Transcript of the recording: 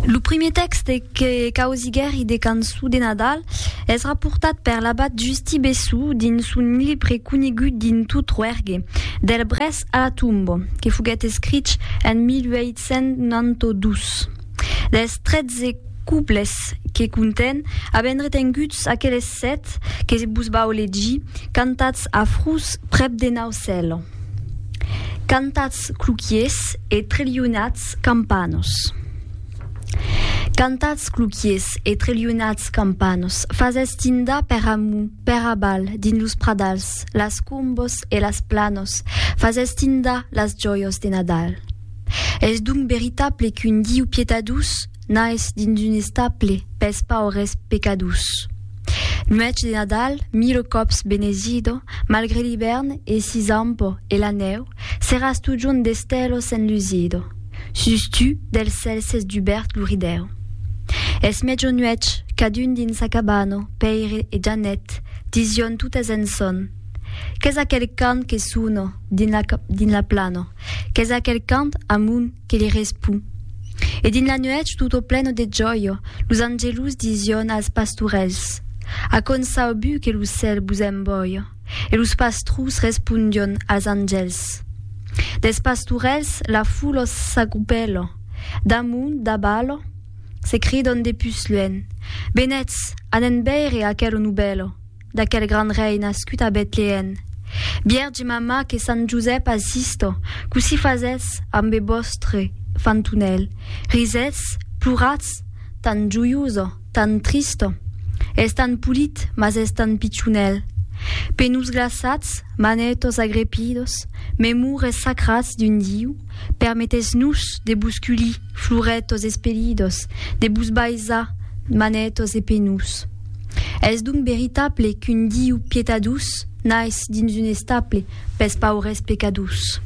Lo primier tèxte que causiguèri de cançon de Nadal es raportat per l'abat Justi Bessú dins son libre conegut dins tot Roergue, Del Brès a la Tomba, que foguèt escrich en 1892. Dels 13 couplets que contèn, avèm retenguts aqueles sèt que vos vau legir, cantats a Frus, prèp de Naucèle. Cantatz cloquiers e trelhonatz campanos. Cantatz cloquiers e trelhonatz campanos, fasètz tindar per amu, per abal, dins los pradals, las combos e las planos, fasètz tindar las jòios de Nadal. Es donc veritable qu'un Diu pietadós Naisse dins un estaple pels paures pecadors. Nuèch de Nadal, mille còps benesido, malgre l'ivèrn e si zampo e la nèu, seràs totjorn d'estèlos enlusido. Sus tu, del cèl s'es dubèrt lo ridèu. Es mejor nuèch, cadun dins sa cabana, Pèire e Janet, dision totes en sòn. Qu'es aquel cant que sona dins la plana? Qu'es aquel cant amunt? que li respon, E dins la nuèch tutto pleno de gioio, los angelus dision als pastorèls, A quònd sau bù que lo cèl vos embòio? E los pastrus respondion als angèls. Dels pastorèls la foulò s'agrupèlò, damont, dabalò, se cridon de pus luènh, Benètz, anèn veire aquelo novèlò! d'aquel grand rei nascut a Betlèen, Bièrge Mamma que Sant Josèp assistò, cossí fasètz ambe vòstre fantunèl, risètz, ploratz, tan joioso, tan tristo. Es tan polit, mas es tan pichonèl. Pe nos glaçats, manètos agrepidos, memures sacrats d'un Diu, permetètz-nos de vos culir, florètos espelidos, de vos baisar, manètos e penós. Es donc veritable qu'un Diu pietadós nais dins un estable pes paures pecadós.